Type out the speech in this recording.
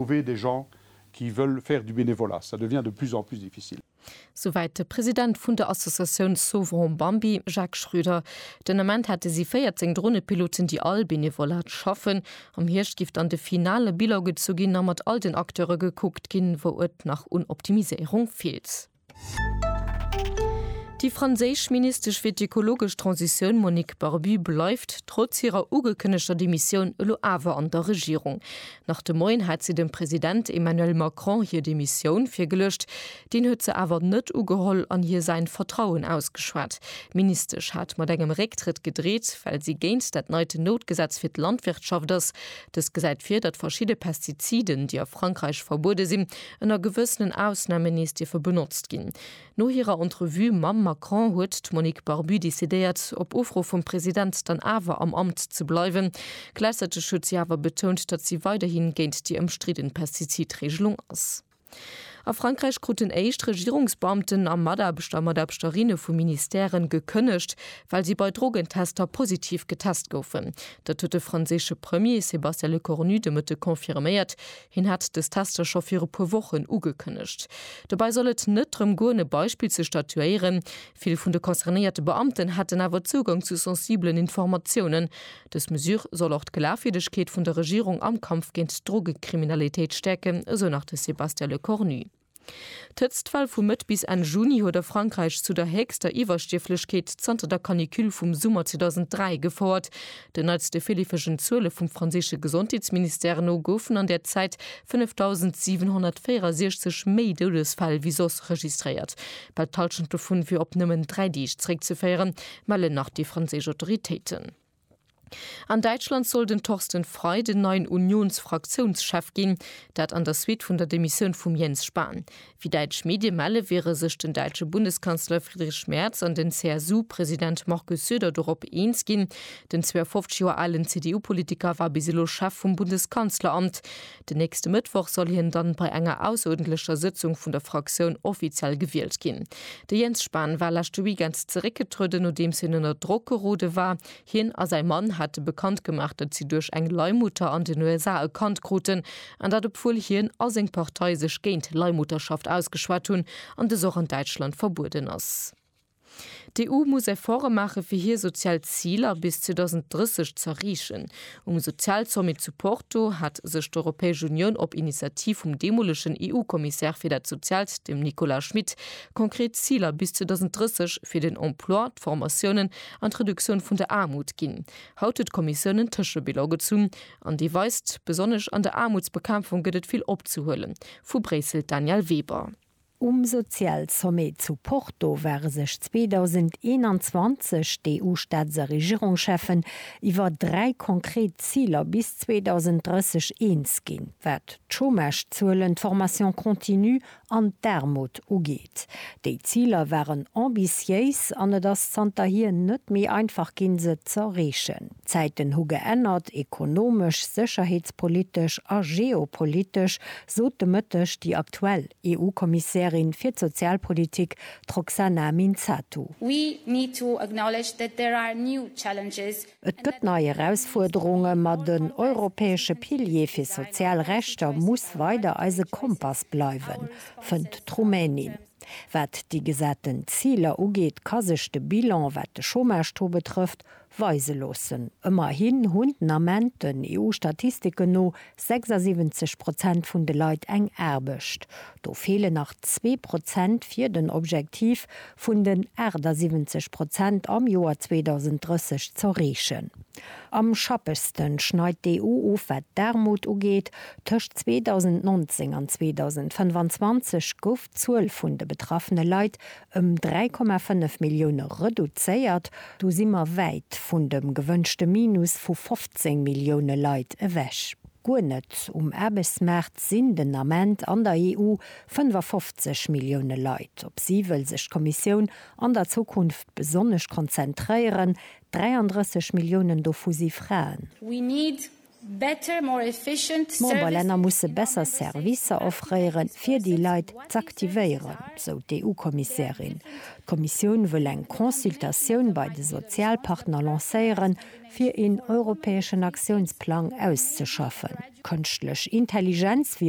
Trouver des gens qui veulent faire du bénévolat, ça devient de plus en plus difficile. Souwäit de President vun der Associatioun Sauverons Bambi, Jacques Schröder. Den Ament hätte si 14 Dronepiloten, déi all Benevolat schaffen. Am Hierscht giff dann de finale Bilan gezu ginn a mat all den Acteure gekuckt ginn, wou et nach un Optimiséierung feelt. Déi franséisch Ministesch fir d'ökologesch Transitioun Monique Barbie bleift trotz hirer ugekënnegter Demissioun elo awer an der Regierung. Nach de Moien hat si dem President Emmanuel Macron hir Demissioun virgeluecht. Deen huet se awer net ugeholl an hir säin Vertrauen ausgeschwat. D'Ministesch hat mat engem Récktrëtt gedreet, well si géint dat neit Noutgesetz fir d'Landwirtschaft ass. Dëst gesäit vir, datt verschidde Pestiziden, déi a Frankräich verbuede sinn, Ënner gewëssenen Ausname nees dierfe benotzt ginn. No hirer Entrevue mam Macron huet d'Monique Barbu decidéiert, op Ufro vum President dann awer am Amt ze bleiwen. Gläichzäiteg huet si awer betount, datt si weiderhi géint déi ëmstridden Pestizidreegelung ass. A Frankräich kruten éischt Regierungsbeamten a Mataarbechter a Mataarbechterinne vu Ministèren gekënnegt, well si bei Drogentester positiv getest goufen. Dat huet de franséische Premier Sébastien Lecornu de Mëtte confirméiert. Hien hat dës Tester scho viru puer Wochen ugekënnegt. Dobäi soll et net drëm goen, e Beispill ze statuéieren. Vill vun de concernéierte Beamten hätten awer Zougang zu sensibelen Informatiounen. Dës Mesure soll och d'Glafwierdegkeet vun der Regierung am Kampf géint d'Drogekriminalitéit stäerken, esou nach de Sébastien Lecornu. D'Hëtztwell vu Mëtt bis Enn Juni huet a Frankräich zu der héchster Iwwerstierflechkeet zanter der Canicule vum Summer 2003 gefouert. Den neitste virleefegen Zuele vum franséische Gesondheetsministère no goufen an där Zäit 5.764 méi Doudesfäll wéi soss registréiert. Bal d'Hallschent dovun wier op nëmmen dräi Deeg zeréckzeféieren, mellen nach déi franséisch Autoritéiten. An Däitschland soll den Thorsten Frei den neien Unions-Fraktiounschef ginn, dat an der Suite vun der Demissioun vum Jens Spahn. Wéi däitsch Medie melle, wiere sech den däitsche Bundeskanzler Friedrich Merz an den CSU-President Markus Söder dorop eens ginn. Den 52 Joer alen CDU-Politiker war bis elo Chef vum Bundeskanzleramt. Den nächste Mëttwoch soll hien dann bei enger ausserordentlecher Sëtzung vun der Fraktioun offiziell gewielt ginn. De Jens Spahn war leschte Weekend zeréckgetrueden, nodeems hien ënner Drock gerode war. Hien a säi Mann hate bekannt gemaach, datt si duerch eng Leihmutter an den USA e Kand kruten, an dat obwuel hien a seng Partei sech géint Leihmutterschaft ausgeschwat hunn an dës och an Däitschland verbueden ass. D'EU muss Efforte maache fir hir sozial Ziler bis 2030 z'erreechen. Um Sozialsommet zu Porto hat sech d'Europäesch Unioun op Initiativ vum deemolegen EU-Kommissär fir dat Soziaalt, dem Nicolas Schmit, konkret Ziler bis 2030 fir den Emploi, d'Formatiounen an d'Reduktioun vun der Aarmut ginn. Haut huet d'Kommissioun en Tëschebilan gezunn an dee weist, besonnesch an der Aarmutsbekämpfung gëtt et vill opzehuelen. Vu Bréissel d'Danièle Weber. Um Sozialsommet zu Porto ware sech 2021 d'EU-Staats a Regierungscheffen iwwer dräi konkret Ziler bis 2030 eens ginn, wat d'Chômagezuelen, d'Formation continue an d'Aarmut ugeet. Déi Ziler waren ambitiéis an et ass zanterhier net méi einfach ginn, se z'erreechen. D'Zäiten hu geännert, ekonomesch, sécherheetspolitesch a geopolitesch, sot de Mëtteg déi aktuell EU-Kommissärin fir d'Sozialpolitik, d'Roxana Minzatu. We need to acknowledge that there are new challenges. Et gëtt nei Erausfuerderungen, ma den europäesche Pilier fir sozial Rechter muss weider eise Kompass bleiwen, fënnt d'Rumänin. Wat déi gesaten Ziler ugeet, ka sech de Bilan, wat de Chômage-Taux betrëfft, weise loossen. Ëmmerhin hunn den Ament, den EU-Statistiken no, 76 Prozent vun de Leit eng Aarbecht. Do feelen nach zwee Prozent fir den Objektiv vun den 78 Prozent am Joer 2030 z'erreechen. Am schappegste schneit d'EU of wat d'Aarmut ugeet. Tëscht 2019 an 2025 gouf d'Zuel vun de betraffene Leit ëm 3,5 Millioune reduzéiert. Do si mer wäit vun dem gewënschte Minus vu 15 Millioune Leit ewech. Guer net um Aarbechtsmaart sinn den Ament an der EU 55 Millioune Leit. Op si wëll sech d'Kommissioun an der Zukunft besonnesch konzentréieren. 33 Milliounen dovu si Fraen. D'Memberlänner musse besser Servicer offréiere fir déi Leit z'aktivéieren, sou d'EU-Kommissärin. D'Kommissioun wëll eng Consultatioun bei de Sozialpartner lancéieren, fir een europäeschen Aktiounsplang auszeschaffen. Kënschtlech Intelligenz wier